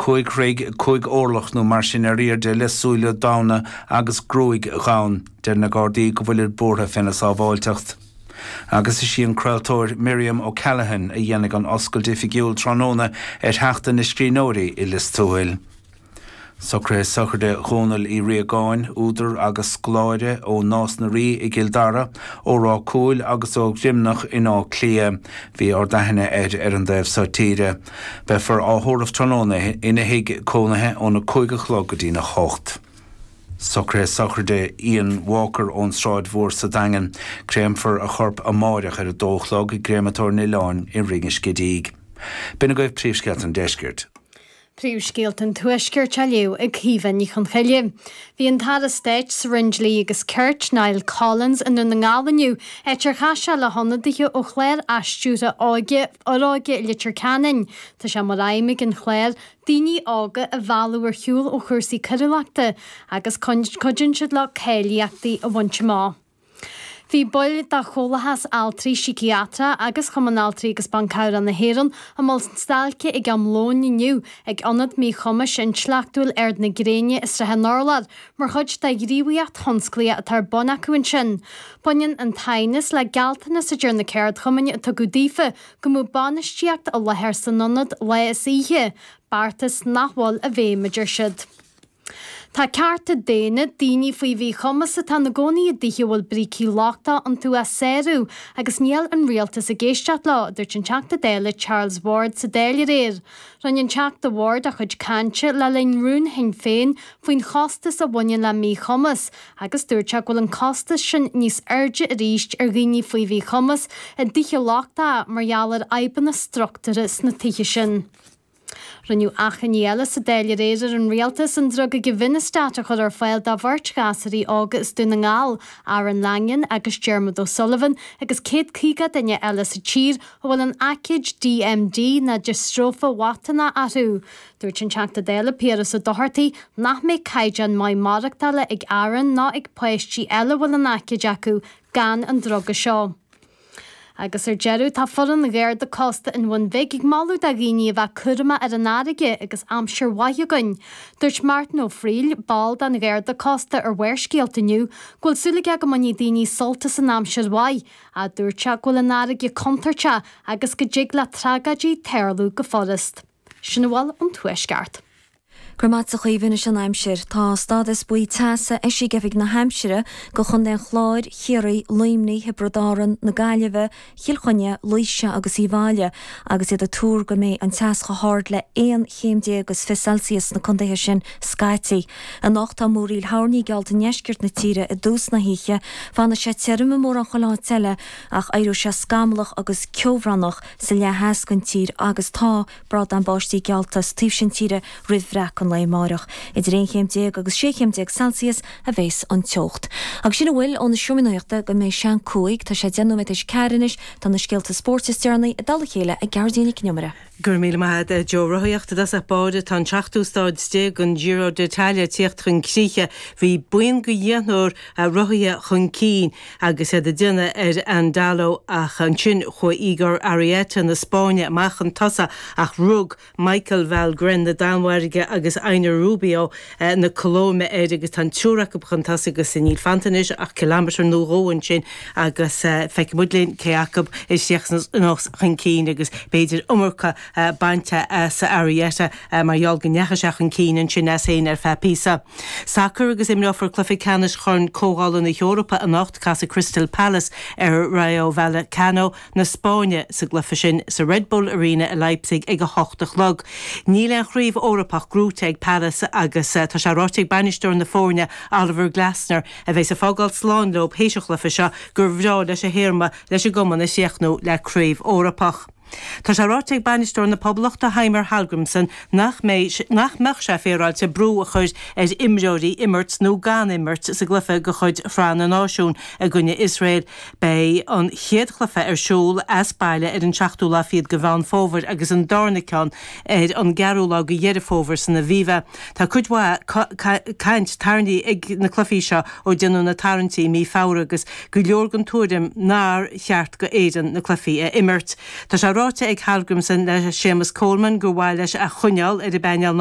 Cúig troigh, cúig orlach nó mar sin ar airde le súile donn agus gruaig dhonn. Deir na Gardaí go bhfuilid buartha féna shábháilteacht. Agus is í an craoltóir Miriam O'Callaghan a dhéanfaidh an oscailt oifigiúil tráthnóna ar Sheachtain na Scríbhneoirí i Lios Tuathail. Socruithe sochraide Dhónaill Uí Riagáin, údar agus scoláire, ó Nás na Rí i gCill Dara, ó Rath Cúil agus ó Dhroimneach in Áth Cliath. Bhí ardaithne air ar an dtaobh so tíre. Beifear á thórramh tráthnóna ina thigh cónaithe óna cúig a chlog go dtína hocht. Socruithe sochraide Ian Walker ón tSráid Mhór sa Daingean. Créamfar a chorp amáireach ar a dó a chlog i gCréamatóir an Oileáin i Rinn an Scidígh. B'in agaibh príomhscéalta an deiscirt. Príomhscéalta an tuaiscirt á léamh ag Caoimhe Ní Chonchoille. Bhí an tAire Stáit sa Roinn Dlí agus Cirt, Niall Collins i nDún na nGall inniu, áit ar chas sé le hionadaithe ó chlár athstiúrtha óige, Fhoróige, Leitir Ceanainn. Tá sé mar aidhm ag an chlár daoine óga a mhealladh ar shiúl ó chúrsaí coiriúlachta agus cuidíonn siad leo cáilíochtaí a bhaint amach. Bhí baill de Chomhlathas Altraí Síciatracha agus Cumann Altraí agus Ban Cabhrach na hÉireann i mbun stailce ag am lóin inniu ag Ionad Míchumais Intleachtúil Ard na Gréine i Sraith an Urláir, Mar chuid de ghníomhaíocht thionsclaíoch atá ar bun acu ansin, baineann an t-aighneas le gealltanas a deir na ceardchumainn a tugadh daofa go mbeadh bainistíocht i láthair san ionad lá is oíche, beartas nach bhfuil i bhfeidhm, a deir siad. Tá cearta daonna daoine faoi mhíchumas atá ina gcónaí i dtithe a bhfuil brící lochtacha iontu á sárú agus níl an rialtas ag éisteacht leo, a dúirt an Teachta Dála Charles Ward sa Dáil aréir. Rinne an Teachta Ward a chuid cainte le linn rún Shinn Féin faoin chostas a bhaineann le míchumas agus dúirt sé go bhfuil an costas sin níos airde arís ar dhaoine faoi mhíchumas i dtithe lochtacha mar gheall ar fhadhbanna struchtúrtha sna tithe sin. Rinneadh achainí eile sa Dáil aréir ar an Rialtas an druga givinostat a chur ar fáil do bheirt ghasúraí óga as Dún na nGall, Aaron Langan agus Diarmuid O'Sullivan, agus 150 duine eile sa tír, a bhfuil an aicíd DMD ná diostróife mhatánach orthu. Dúirt an Teachta Dála Piaras Ó Dochartaigh nach mbeidh caighdeán maith maireachtála ag Aaron ná ag páistí eile a bhfuil an aicíd acu gan an druga seo. Agus ar deireadh, tá foireann an Gharda Cósta an Bhuin Bhig ag moladh do dhaoine a bheith cúramach ar an fharraige agus aimsir mhaith againn. Dúirt Martin Ó Fríl, ball den Gharda Cósta ar Bharrscéalta inniu go bhfuil súil aige go mbainfidh daoine sult as an aimsir mhaith, a dúirt sé go bhfuil an fharraige contúirteach agus go dtig le tragóidí tarlú go furast. Sin a bhfuil ón Tuaisceart. Go raibh maith agatsa a Chaoimhín Anois an aimsir, tá stádas buí teasa eisithe ag Oifig na hAimsire go Chontae an Chláir, Chiarraí, Luimní, Thiobraid Árann, na Gaillimhe, Chill Chainnigh, Laoise agus Uíbh Fhaille agus iad ag tuar go mbeidh an teas chomh hard le 11 chéim is fiche Celsius sna contaetha sin scaití. Anocht tá múraíl thoirní geallta i ndeisceart na tíre i dtús na hoíche. Fanfaidh sé tirim i mórán chuile áit eile ach éireoidh sé scamallach agus ceobhránach sa leath theas den tír agus tá bradán báistí geallta sa taobh sin tíre roimh bhreacadh an lae amáireach. Idir aon chéim déag agus sé chéim déag Celsius a bheas an teocht. Agus sin a bhfuil ó na seomraí nuachta go mbeidh sé an cúig. Tá sé deich nóiméad tar éis a ceathair anois. Tá na scéalta spóirt is deireanaí i dtoll a chéile ag Gearóidín Nic an Iomaire. Go raibh míle maith agat Joe. Rothaíocht i dtosach báire Tá an seachtú stáid déag den Giro d'Italia ag tíocht chun críche. Bhí buíon go dheichniúr rothaithe chun cinn agus iad ag déanamh ar Andalo ach ansin chuaigh Igor Arrieta na Spáinne amach chun tosaigh ach rug Michael Valgren na Danmhairge agus Einar Rubio na Colóime air agus tá an triúr acu chun tosaigh agus níl fanta anois ach ciliméadar nó dhó ansin agus feicfidh muid linn cé acu a chríochnós chun cinn agus b'fhéidir iomarca bainte as Arrieta mar gheall go ndeachaigh sé chun cinn ansin as féin ar feadh píosa. Sacar agus imreofar cluiche ceannais Chorn Comhdhála na hEorpa anocht, casfaidh Crystal Palace ar Rayo Vallecano. na Spáinne sa gcluiche sin sa Red Bull Arena i Leipzig ag a hocht a chlog. Níl aon chraobh Eorpach gnóite ag Palace agus tá sé ráite ag bainisteoir na foirne, Oliver Glasner, a bheas ag fágáil slán leo théis an chluiche seo, gur bhreá leis a théarma leis an gcumann a chríochnú le craobh Eorpach. Tá sé ráite ag bainisteoir na Poblachta, Heimir Hallgrimsson, nach mbeidh, nach mbeadh sé féaráilte brú a chur ar imreoirí imirt nó gan imirt sa gcluiche de chuid Shraith na Náisiún i gcoinne Iosrael Beidh an chéad chluiche ar siúl as baile ar an seachtú lá fichead de Mheán Fómhair agus an darna ceann ar an gceathrú lá de Dheireadh Fómhair san Aviva. Tá cuid mhaith caint tarraingthe ag na cluichí seo ó déanadh na tarraingtí mí Feabhra agus go leor den tuairim nár cheart go Éireann na cluichí a imirt. Tá sé ráite ag Hallgrimsson le Séamus Coleman gur mhaith leis a choinneáil ar an bpainéal